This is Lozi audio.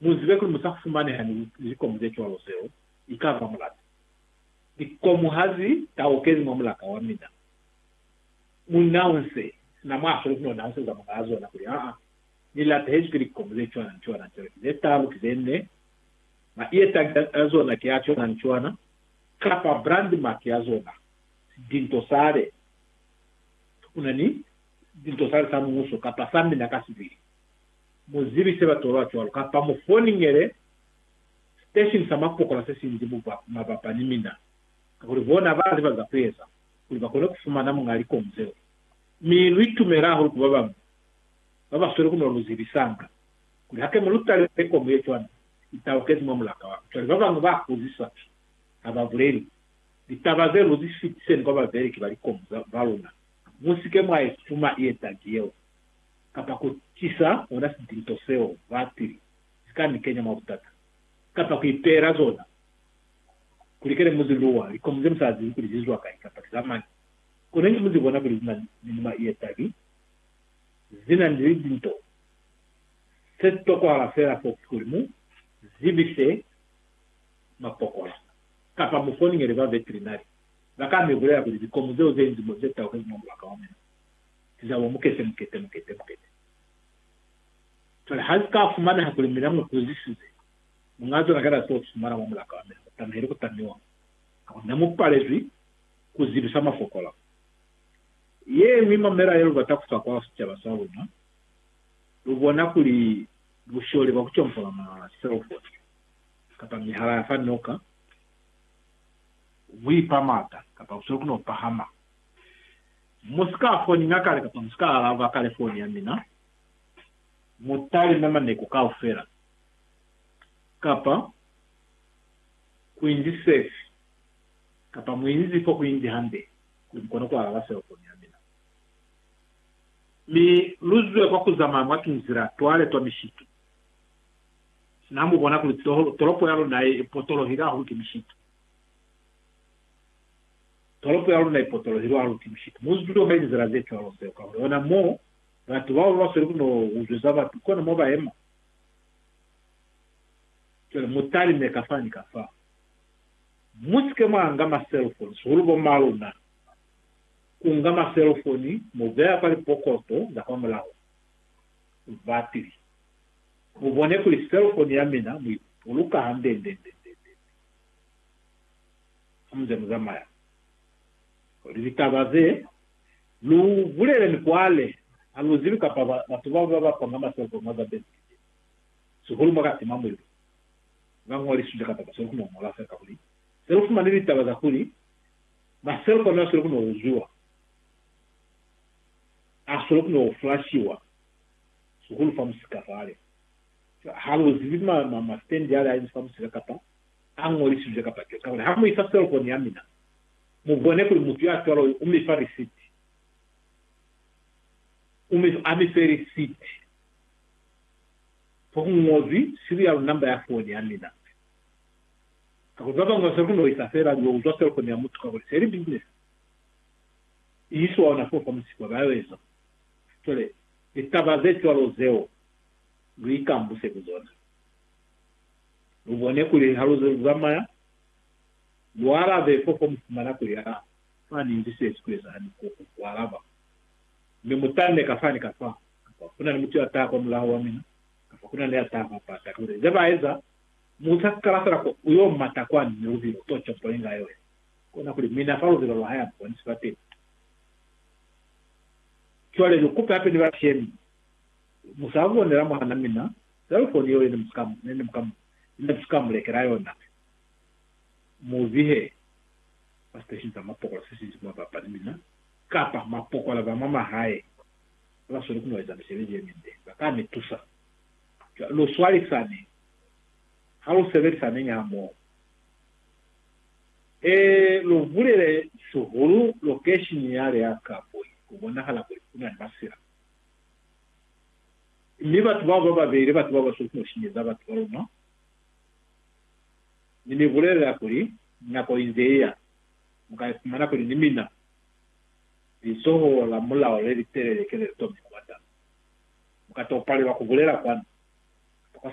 Mu zibe kuli mu sa fumaneha ni likomu ze cwalo zeo i ka ba mulata. Likomu ha zi taukezi mwa mulata wa mina. Munna u nse sina mwa sweli kono na useza muñaa zona kuli, Aa, ni latehezwi ki likomu ze cwana ni cwana ni cwana, ki ze talu, ki ze ne, maietangi a zona ki a cwana ni cwana, kapa brand mark ya zona, dinto sale, una ni dinto sale sa muhuso, kapa sa mina ka sibili. Mu zibise batolwa cwalo, kapa mu foningele siteshini sa mapokola se si nzi mabapa ni mina, kakuli bona ba ziba za ku eza kuli ba kone ku fumana muñ'a likomu zeo. Mi lu itumela hahulu ku ba bañwi ba ba sweli ku no lu zibisanga kuli, Hake mu lu talelele ikomu ye cwani, i taukezi mwa mulaka wa ka. Cwale ba bañwi ba kuzisa ha ba buleli litaba zeo, Lu zi fitiseni kwa babeleki ba likomu ba luna. Mu si ke mwa i fuma i etangi yeo. kapa ku tisa ona sitinto seo batili si ka ni kenya mwa butata, kapa ku ipeela zona kuli kene mu zi luwa, likomu ze mu sa zibi kuli zi zwa kai kapa ki za mañi. Kono inge mu zi bona kuli zina ni numa ye tabi, zina ni litinto, se si tokwahala fela fo ki kuli mu zibise mapokola, kapa mu foningele ba veterinari, ba ka mi bulela kuli likomu zeo ze inzi mo ze taukezi mwa mubaka wa mina, Zabo mukete, mukete, mukete, mukete. Cwale ha si ka fumaneha kuli mina mu huzisize Muñaa zona kana seo ki mwana mwa mulaka wa mina, mu tamihele ku tamiwa, kakuli ne mu palezwi ku zibisa mafokola. Ye ñwi mamela ye lu bata ku fa kwa sicaba sa luna, lu bona kuli busholi bwa ku compola ma selofoni kapa mihala ya fa noka bu ipa mata, kapa busoli ku no pahama. Mu si ka foninga kale kapa mu si ka alaba kale foni ya mina. Mu talime maneku kaufela kapa ku inzi sefi kapa mu inzi fo ku inzi hande kuli mu kone ku alaba selofoni ya mina. Mi lu zwe kwa ku zamaya mwa tunzila twa le twa mishitu. Sina mu bona kuli tolopo ya luna i potolohile hahulu ki mishitu. Tolopo ya luna ipotolohelwe hahulu ki mushiku. Mu zwi tuta mwa lizila ze cwalo seo, kahone ona mo batu bao ba sweli ku no uzweza batu, kona mo ba yema. Cwale mu talime kafa ni kafa. Mu si ke mwa nga ma cellphone, sihulu bo ma luna. Ku nga ma cellphone mu beya kwa lipokoto za kwa mulaho. Batili. Mu bone kuli cellphone ya mina mu i buluka hande nde nde nde nde nde. hamuze muzamaya, kuli litaba ze lu bulele ni kwale ha lu zibi kapa batu baba ba bapanga maselepo mwa za Benedictine, sihulu mwa Katima Mulimu, ba ñoliswile kapa ba sweli ku no ñola fela kakuli se lu fumani litaba za kuli maselepo ne a sweli ku no uzwiwa a sweli ku no flashiwa, sihulu fa musika fale. Ha lu zibi ma, ma, ma stand ale a inzi fa musika kapa a ñolisizwe ka pate. Kakuli ha mu isa selofoni ya mina, mu bone kuli mutu ya cwalo u mi fa risiti. U mi fa, a mi fe risiti fo ku ñozwi serial number ya foni ya mina nze. Kakuli ba bañwi ba sa koni ku isa fela liyo uzwa selofoni ya mutu kakuli se li business. I iswa ona foo fa musipwa, ba yo eza. Cwale, litaba ze cwalo zeo lu ikambuse ku zona. Lu bone kuli ha lu ze lu zamaya, lu alabe fofo mu fumana kuli ha fani ni se si ku ezahali ko ku alaba. Mi mu tanne ka fani ka fa, kapa ku na ni mutu ya taha kwa mulaho wa mina, kapa ku na ni ya taha kwa pata, kuli ze ba eza, mu sa kala fela ku yo mata kwani ni lubilo to componi nga yoya, kona kuli mina fa lubilo lwa haya mpo ni si bateni. Cwale lu kupe hape ni bashemi, mu sa bonela mwan'a mina Selufoni yeo yene muka mu lekela yona mi mu zihe mwa siteshini sa mapokola sesinji mwa bapali mina, kapa mapokola ba mwa mahae baba sweli ku no eza misebezi yeminde ba ka mi tusa. Cwale lu swalisane ha lu sebelisaneñi hamoho. Ee, lu bulele sihulu lokeshini yale ya Kabwe ku bonahala kuli ku na ni masila. Mi batu bao bababeli, batu babasweli kusinyeza batu baluna, Ni mi bulelela kuli, nako inze iya, muka ifumana kuli ni mina lizoho la mulao lelitelele ke lelitomi kubata. Muka to palelwa kubulela kwanu.